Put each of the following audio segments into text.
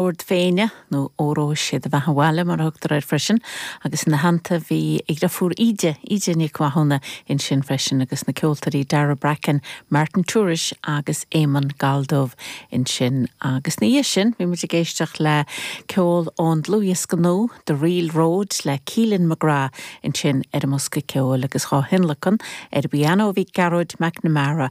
Dord Féinne, nó Óró sé do Bheatha Bhaile mar a thugtar air freisin, agus ina theannta bhí a dhrifiúr Íde, Íde Nic Mhathúna, ansin freisin agus na ceoltóirí Daragh Bracken, Martin Tourish agus Éamonn Galldubh ansin. Agus ina dhiaidh sin bhí muid ag éisteacht le ceol ón dlúthdhiosca nua, The Reel Road le Keelan McGrath ansin ar an mbosca ceoil agus dhá thionlacan ar an bpianó bhí Gearóid McNamara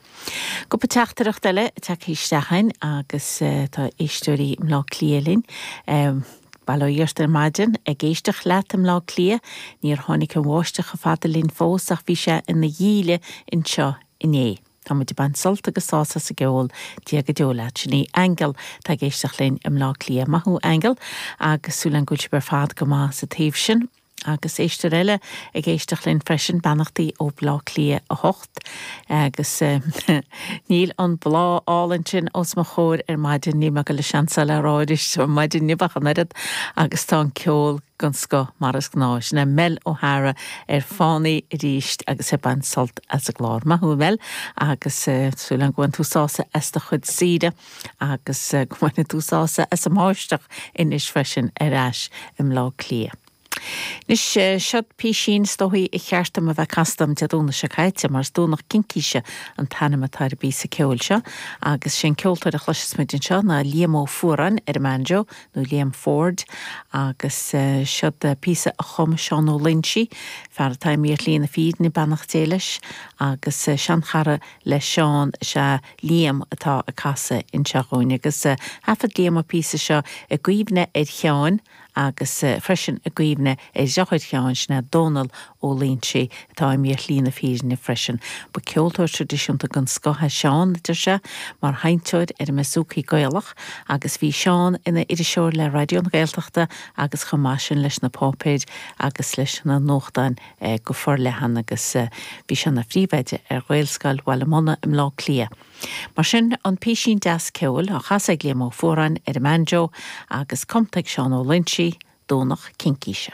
Cúpla teachtaireacht eile tagtha isteach againn agus tá éisteoirí i mBleá Cliath linn. Bail ó Dhia ort ar maidin ag éisteacht leat i mBleá Cliath. Níor tháinig an bháisteach chomh fada linn fós ach bhí sé ina dhíle anseo inné. Tá muid ag baint sult agus sásamh as an gceol. Dia go deo leat. Sin í Aingeal atá ag éisteacht linn i mBleá Cliath. Maith thú Aingeal agus súil againn go bhfuil sibh ar fad go maith sa taobh sin. Agus éisteoir eile ag éisteacht linn freisin, beannachtaí ó Bleá Cliath a hocht. Agus níl an Bleá álainn sin os mo chomhair ar maidin, níl mé ag goil é sin uilig a rá aríst ar maidin inniu ach an oiread, agus tá an ceol den scoth mar is gnáth. Sin é Mel O'Hara ar fáil arís agus é ag baint sult as an gclár. Maith thú Mel, agus súil againn gur bhain tú sásamh as do chuid saoire. agus go mbaine tú sásamh as an mbáisteach anois freisin ar ais i mBleá Cliath. Anois, seod písín, is dóigh ba cheart dom a bheith casta agam Dé Domhnaigh seo caite, mar is Domhnach Cincíse an t-ainm atá ar an bpíosa ceoil seo, agus is é an ceoltóir a chloisfidh muid anseo ná Liam Ó Fuaráin ar an mbanjo, nó Liam Ford, agus seod píosa a chum Seán Ó Loinsigh, fear atá imithe ar Shlí na Fírinne, beannacht Dé leis, agus sean-chara le Seán is ea, Liam atá á chasadh anseo dhúinn agus thaifead Liam an píosa seo i gcuimhne ar Sheáin agus freisin i gcuimhne ar dheartháir Sheáin, sin é Dónal Ó Loinsigh atá imithe ar shlí na fírinne freisin. Ba ceoltóir tradisiúnta den scoth é Seán, a deir sé, mar sheinnteoir ar an mbouzouki Gaelach agus bhí Seán ina iriseoir le Raidió na Gaeltachta agus chomh maith leis sin leis na páipéir agus leis na nuachtáin. go forleathan agus bhí sé ina phríomhoide ar Ghaelscoil Bhaile Munna i mBleá Cliath. Mar sin, an písín deas ceoil á chasadh ag Liam Ó Fuaráin ar an mbanjo agus cumtha ag Seán Ó Loinsigh, Domhnach Cincíse.